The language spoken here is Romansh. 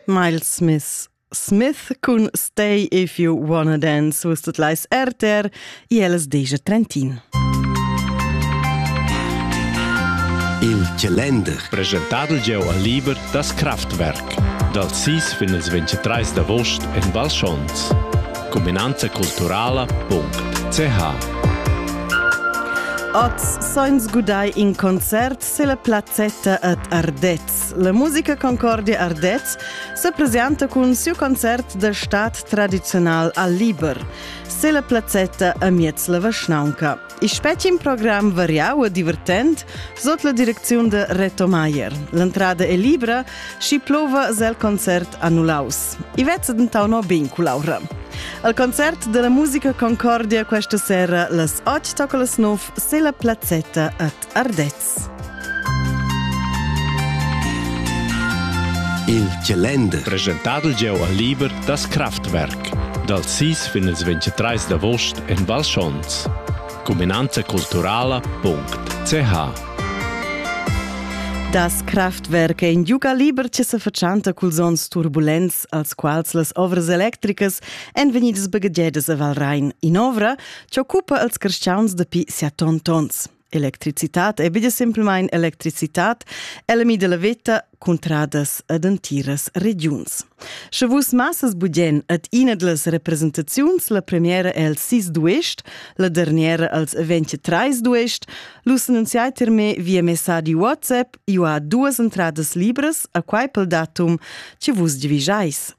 Miles Smith Smith cun Stay If You Wanna Dance us tot lais RTR i els deja Trentin. Il Calender presentadel gieu al liber das Kraftwerk dal 6 fin il 23 d'avost en Val Schons. Cuminanza culturala.ch Oz sainz gudai in concert se la plazzetta ad Ardet La musica Concordia Ardez se presenta cun siu concert de stat tradizional al Liber. Se la plazzetta amiez la Vaschnaunca. Il specim program variau e divertent sot la direcziun de Reto Maier. L'entrada è libra și plova zel concert annulaus. I vezza dentau no bin cu Laura. Al concert della musica Concordia questa sera las 8 tocca las 9 se la plazzetta at Ardez. Il calender presentadel gieu al liber das Kraftwerk dal 6 fin ils 23 d'avost en Val Schons. Cuminanza culturala.ch Das Kraftwerk è in giuga liber che sa fatschanta culs onns turbulents, als quals las ovras electricas èn vegnidas baghegiadas a Valrein. In'ovra che occupa als cristians dapi set tons. Electricitad è be semplmain electricitad, ella mida la veta cuntradas ad entiras regiuns. Sche vus massas budien ad ina dlas representaziuns, la premiera è el 6 duest, la derniera als 23 duest, l'us annunziai ter me via messadi WhatsApp, io ha duas entradas libras, a quai pel datum che vus divigiais.